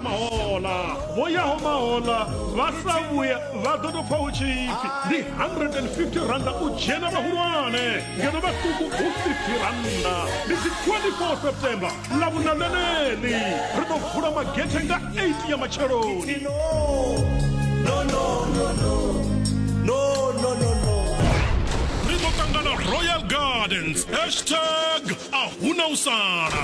mahola vho yaho mahola vha sa vhuya vha ḓo tou pfa hu tshi pfi ndi 150 randa u dzhena vhahulwane ngeno vhaṱuku hu 50 randa ndi dzi 24 september ḽa vhuna ḽeneḽi ri ḓo vula magethe nga 8 ya matsheloni ri ḓo ṱangana royal gardens hashtag a huna u sala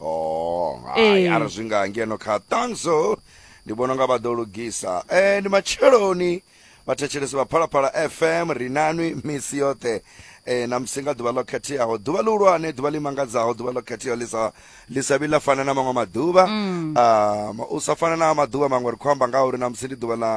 oh hai ara zwi nga ngeno kha tanzo ndi vhona nga vha ḓo lugisa eh ndi matsheloni vhathetshelesi vha phalaphala fm ri nanwi misi yoṱhe eh na musi nga ḓuvha ḽo khetheaho ḓuvha ḽihulwane ḓuvha ḽi mangadzaho ḓuvha ḽo khetheaho ḽi sa ḽi sa vhi ḽa fana na maṅwe maḓuvha um u sa fana na maḓuvha maṅwe ri khou amba nga uri na musi ndi ḓuvha ḽa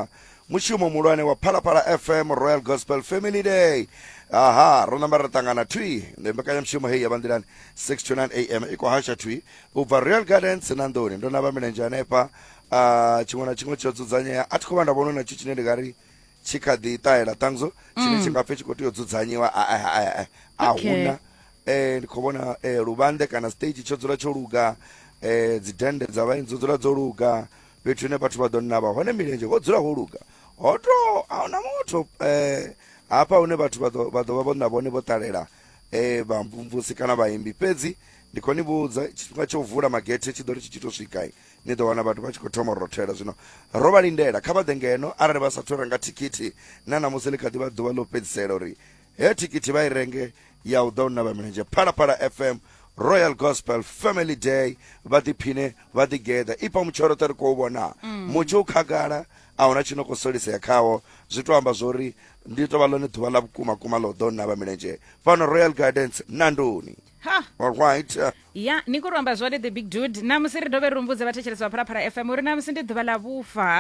mushumo muhulwane wa phalaphala fm royal gospel family day aha ro namba ri ṱangana thwi ndi mbekanyamushumo heyi ya vhanḓilani 6 to 9 am i khou hasha thwi u bva royal gardens na nḓuni ndo namba milenzhe hanefha ah, tshiṅwe na tshiṅwe tsho dzudzanyea a thi khou vha nda vhono na tshi tshine ndi nga ri tshi kha ḓi ṱahela ṱangzo tshine tshi nga pfe tshi khou tea u dzudzanyiwa a- a- a- a- a Okay. huna eh ndi khou vhona eh, luvhanḓe kana stage tsho dzula tsho luga eh dzidennde dza vhaeni dzo dzula dzo luga fhethu hune vhathu vha ḓo navha hone milenzhe ho dzula ho luga ho to a huna muthu eh hafha hune vhathu vha ḓo vha ḓo vha vho na vhone vho ṱalela eh vha mvumvusi kana vhaimbi fhedzi ndi khou ni vhudza tshifhinga tsha u vula magethe tshi ḓo ri tshi tshi to swika ni ḓo wana vhathu vha tshi khou thoma u rothela zwino ro vha lindela kha vha ḓe ngeno arali vha sathu renga thikhithi na ṋamusi ḽi kha ḓi vha ḓuvha ḽo fhedzisela uri he thikhithi vha i renge ya u ḓa u navha milenzhe phalaphala fm royal gospel family day vha ḓiphine vha ḓigeḓa ipa mutshoroṱe ri khou vhona mm. mutshi u khagala a huna tshi no khou solisea khawo zwi to amba zwori ndi tovha ḽone ḓuvha ḽa vhukuma kuma ḽo ḓo navha milenzhe fhano royal gardens nandoni ha all right uh, ya ni khou ri amba zwone the big dude namusi ri dovhe ri rumbudze vhathetshelesi vha phalaphala fm uri namusi ndi ḓuvha ḽa vhufa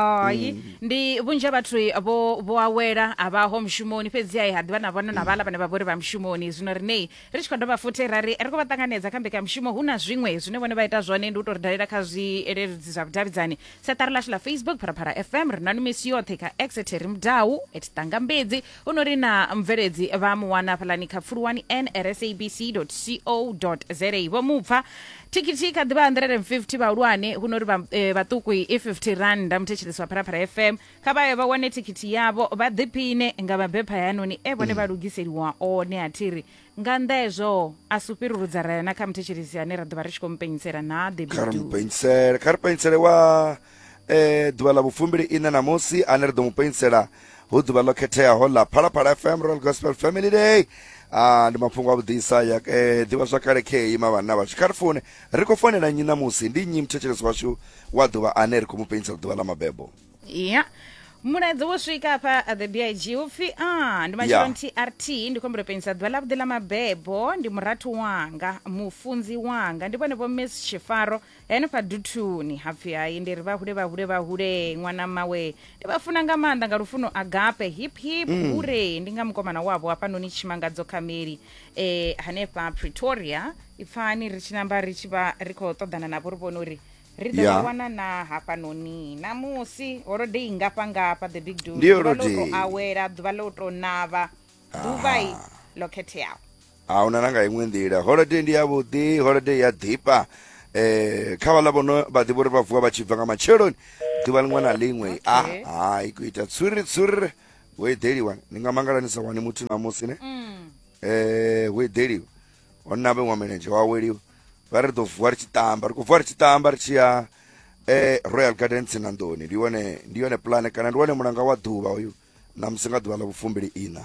ai ndi vhunzhi ha vhathu vho vho awela a vhaho mushumoni fhedzi ai ha ḓivha na vhona na vhala vhane vha vhori vha mushumoni zwino rinei ri tshi khou dovha futhi ra ri ri khou vha ṱanganedza kha mbekanyamushumo hu na zwiṅwe zwine vhone vha ita zwone ndi u tou ri dalela kha zwileludzi zwa vhudavhidzani seṱari lashu ḽa facebook phalaphala fm ri nanu misi yoṱhe kha exetery mudau at tangambedzi u no ri na mubveledzi vha mu wana hafhaḽani kha pfuluwani nsabc co za vho mupfa thikhithi kha ḓivha 150 vhahulwane hu no ri vha- eh, vhaṱuku i 50 randa muthetshelesi wa phalaphala fm kha vha ye vha wane thikhithi yavho vha ḓiphine nga mabepha hayanoni e vhone vha lugiseliwa one a thiri nga nnḓa hezwo a si u fhirurudza ra ya na kha muthetshelesi ane ra ḓo vha ri tshi khou mupenyisela na kha ri debidu mupenyisele kha ri penyisele wa e ḓuvha ḽa vhufumbili ine ṋamusi ane ri ḓo mu penisela hu ḓuvha ḽo khetheaho ḽa phalaphala fm royal gospel family day ah, ndi mafhungo a vhuḓisa ya eh, ḓivha zwakale khei mavhanna vhashu kha ri fune ri khou fonela nnyi ṋamusi ndi nnyi muthetshelesi washu wa ḓuvha ane ri khou mu penisela ḓuvha ḽa mabebo ya mulaedza wo swika hafha at the big upfi a ndi matshelo Yeah. trt ndi khombelo penisa ḓuvha ḽavhuḓi ḽa mabebo ndi murathu wanga mufunzi wanga ndi vhone vho miss tshifaro henefha duthuni hapfi hai ndi ri vhahule vhahule vhahule ṅwana mawe ndi vha funa nga maanḓa nga lufuno agape hip hip Mm. hure ndi nga mukomana wavho hafhanoni tshimangadzo khameli eh hanefha pretoria ipfani ri tshi namba ri tshi vha ri khou ṱoḓana navho ri vhone uri ri ḓo Yeah. vha wana na hafhanoni namusi holodei ngafha ngafha the big dude Ndi ḓuvha ḽo holodei. tou awela ḓuvha ḽo tou navha ḓuvha i ḽo khetheaho a huna na nga iṅwe nḓila holiday ndi yavhuḓi holiday ya ḓifha eh kha vhaḽa vhono vha ḓivha uri vha vuwa vha tshi bva nga matsheloni ḓuvha liṅwe na liṅwe a Okay. hai ku ita tsuri tsuri wo eḓeliwa ni nga mangala ni sa wani muthu namusi ne Mm. eh wo eḓeliwa ho navhe wa milenzhe wa weliwa vha ri ḓo vuwa ri tshi tamba ri khou vuwa ri tshi tamba ri tshi ya eh royal garden tsinandoni ndi yone ndi yone pulane kana ndi wone mulanga wa ḓuvha uyu namusi nga ḓuvha ḽa vhufumbili ina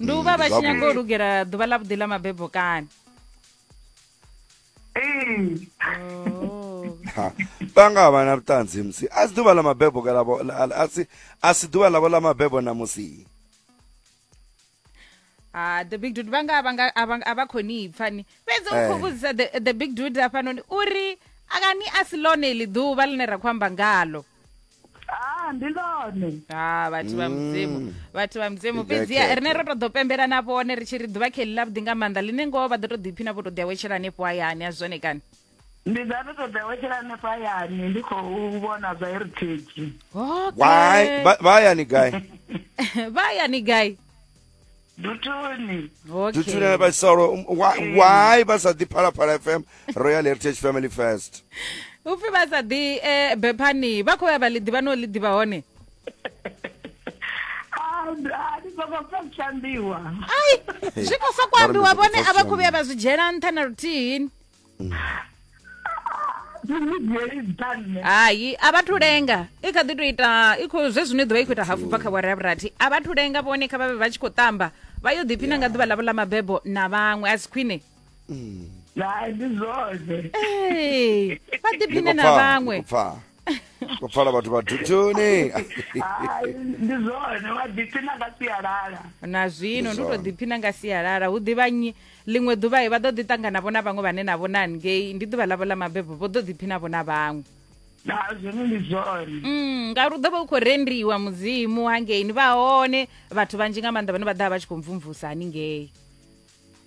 ndi u vha vha tshi nyaga u lugela ḓuvha ḽa vhuḓi ḽa mabebo kani vhanga oh. vha na vhuṱanzi musi a si ḓuvha ḽa mabebo kalavo a si ḓuvha ḽavho ḽa mabebo na musi ha ah, the big dude vhanga a vha khou ni pfa ni fhedzi u khou eh. vhudzisa the big dude afhanoni uri akani a si ḽone iḽi ḓuvha ḽine ra khou amba ngalo ah ndi lone ha vhathu vha mudzimu vhathu vha mudzimu Ndi fhedziha dzhakete. rine ro to ḓo pembela na vhone ri tshi ri ḓuvha kheli ḽa vhuḓi nga maanḓa ḽine ngoho vha ḓo to ḓiphina vho to ḓi awetshela hanefho hayani a zwone kani ndi nga to ṱoḓa wetshela hanefha hayani ndi khou vhona zwa heritage why okay Ba- bayani guy vha hayani gai dutuni okay dutune vha solo um, why, mm. why vha sa ḓi phalaphala fm royal heritage family first upfi vha sa ḓi eh, bephani vha khou ya vha ḽi ḓivha no ḽi ḓivha hone ai zwi khou sokou ambiwa vhone a vha khou vhuya vha zwi dzhiela nṱha na luthihini hayi a vha thu lenga i kha ḓi to ita i khou zwe zwino i ḓovha i khou ita hafu bva kha vhore ya vhurathi a vha thu lenga vhone kha vha vhe vha tshi khou tamba vha yo ḓiphina nga ḓuvha ḽavho ḽa mabebo na vhaṅwe a si khwine hai ndi zwone vha ḓiphine na vhaṅwe ko pfala vhathu vha thuthuni Hai, ndi zwone wa ḓiphina nga sialala na zwino ndi u tou ḓiphina nga sialala hu ḓivha nyi ḽiṅwe ḓuvha he vha ḓo ḓi ṱanganavho na vhaṅwe vhane navho na ngei ndi ḓuvha ḽavho ḽa mabebo vho ḓo ḓiphinavho na vhaṅwe na zwone ndi zwone Mm, ngauri u ḓo vha u khou rendiwa mudzimu hangei ni vha hone vhathu vhanzhi nga maanḓa vhane vha ḓa vha tshi khou mvumvusa haningei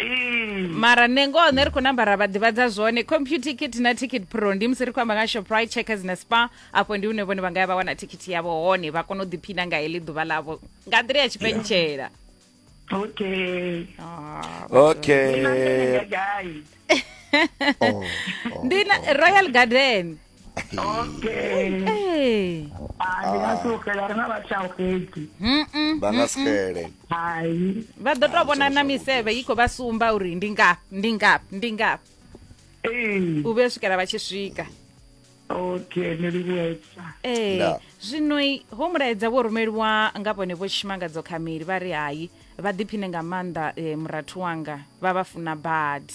Ee. mara nṋe ngoho nṋe ri khou namba ra vha ḓivhadza zwone computer kit na ticket pro ndi musi ri khou amba nga shoprite checkers na spa afho ndi hune vhone vha nga ya vha wana thikhithi yavho hone vha kona u ḓiphina nga heḽi ḓuvha ḽavho nga nḓila ya tshipentshela Okay. Ah. okay Nṋe nga gai? oh, oh. ndi na royal garden okay Hey. Ah, ndi nga si u xela ri na vha tshau xedzi Mm-mm. vha nga si xele hai vha ḓo tou vhona na misevhe i khou vha sumba uri ndi ngafhi ndi ngafhi ndi ngafhi ee u vhuya u swikela vha tshi swika okay ni livhuwesa ee Nda. zwino i- ho mulaedza vho rumeliwa nga vhone vho tshimangadzo khameli vha ri hai vha ḓiphine nga maanḓa eh, murathu wanga vha vha funa badi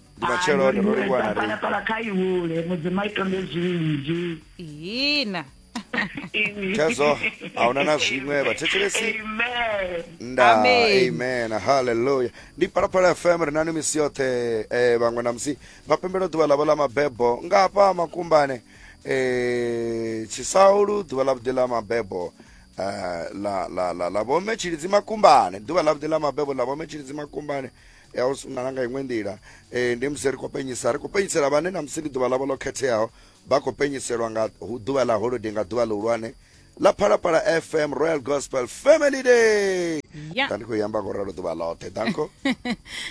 ndi matshelo one ro livhuwa na riṋe pala kha ihule mudzimu a itonde zwinzhi hina Chazo, hauna na zwiṅwe vhathetshelesi amen nda Amen. amen haleluya ndi phalaphala fm ri nani misi yoṱhe eh, vhaṅwe na musi vha pembela ḓuvha ḽavho ḽa mabebo nga hafha makumbane eh, tshisaulu ḓuvha ḽa vhuḓi ḽa mabebo eh, la la la la vhomme tshilidzi makumbane ḓuvha ḽa vhuḓi ḽa mabebo ḽa vhomme tshilidzi makumbane else na nga iṅwe nḓila um ndi musi ri khou penyisa ri khou penyisela vhane na musi ndi ḓuvha ḽavho ḽo khetheaho vha khou penyiselwa nga ḓuvha ḽa holode nga ḓuvha ḽihulwane ḽa phalaphala fm royal gospel family day yeah. ndi khou yamba ngoralo ḓuvha ḽoṱhe danko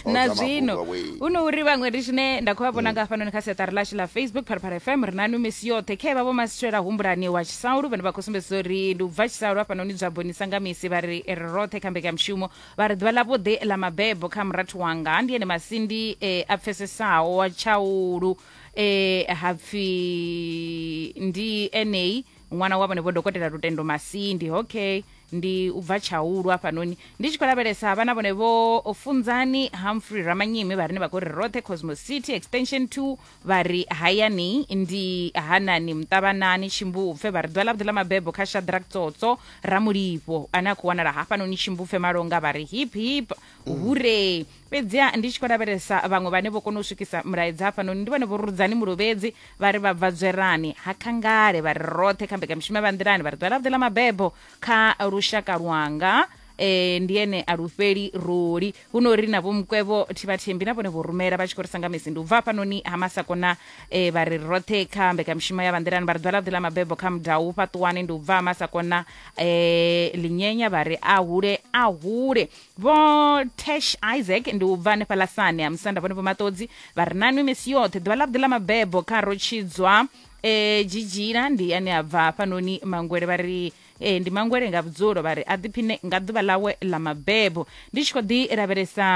na zwino hu no uri vhaṅwe ri tshine nda khou vha vhona mm. nga hafhanoni kha siaṱari ḽashu ḽa facebook phalaphala fm ri na nwi misi yoṱhe khe vha vho masitshela humbulani wa tshisaulu vhane vha khou sumbedzisa uri ndi u bva tshisaulu hafhanoni dzwa bonisa nga misi vha ri ri roṱhe kha mbekanyamushumo Vha ri, Ḓuvha ḽavhuḓi ḽa mabebo kha murathu wanga ndi ene masindi e a pfesesaho wa tshaulu e ha pfi ndi enei ṅwana wa vhenevho dokotela Lutendo Masindi. Okay, ndi u bva Tshaulu hafhanoni. Ndi tshi khou lavhelesa havha na vhone vho Funzani Humphrey Ramanyimi vha rine vha khou ri roṱhe Cosmos City, Extension 2, vha ri hayani ndi hanani muṱavhanani tshimbupfe vha ri ḓuvha ḽavhuḓi ḽa mabebo kha shadrak tsotso ramulivho ane a khou wanala hafhanoni tshimbupfe malonga vha ri hip hip mm. hure fhedziha ndi tshi khou lavhelesa vhaṅwe vhane vho kona u swikisa mulaedza hafhanoni ndi vhone vho rudzani mulovhedzi vha ri vha bva dzwerani ha khangale vha ri roṱhe kha mbekamishumo vha nḓilani vha ri ḓuvha ḽavhuḓi ḽa mabebo kha lushaka lwanga um ndi ene a lufheli roli huno ri na vho mukwevho thibathembi na vhone vho rumela vha tshi khou ri sanga misi ndi u bva hafhanoni ha masako na e, vha ri roṱhe kha mbekanyamushumo ya vhanḓilani vha ri ḓwala ḓi ḽa mabebo kha mudau fhaṱuwani ndi u bva ha masako na e, linyenya vha ri a hule a hule vho tash isaac ndi u bva hanefha lasane ha musanda vhone vho maṱodzi vha ri nanwi misi yoṱhe ḓuvha ḽa vhuḓi ḽa mabebo kha rotshidzwa e, jijila ndi ane a bva hafhanoni mangwele vha ri ee ndi mangwele nga vhudzulo vha ri a ḓiphine nga ḓuvha ḽawe ḽa mabebo ndi tshi khou ḓi lavhelesa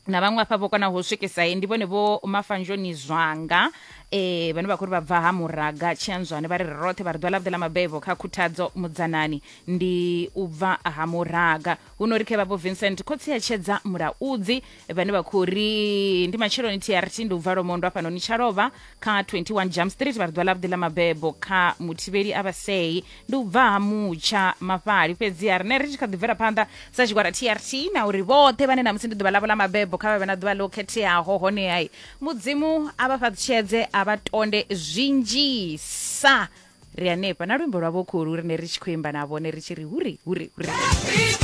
na vhaṅwe afha vho konaho u swikisa he ndi vhone vho mafanzhoni zwanga eh vhane vha khou ri vha bva ha muraga tshianzwane vha ri ri roṱhe vha ri ḓuvha ḽavhuḓi ḽa mabebo kha khuthadzo mudzanani ndi u bva ha muraga huno ri khe vhavho vincent khotsi a tshedza mulaudzi vhane vha khou ri ndi matsheloni trt ndi u bva lomondo afhanoni tsha lovha kha 21 jam street vha ri ḓuvha ḽavhuḓi ḽa mabebo kha muthivheli a vhasei ndi u bva ha mutsha mafhali fhedzi a rine ri tshi kha ḓibvela phanḓa sa tshigwada trt na uri vhoṱhe vhane namusi ndi ḓuvha ḽavho ḽa mabebo kha vha vhe na ḓuvha ḽo khetheaho honehai mudzimu a vha fhaṱutshedze a vha tonde zwinzhisa ri hanefha na luimbo lwavho khulu rine ri tshi khou imba navho ne ri tshi ri huri huri huri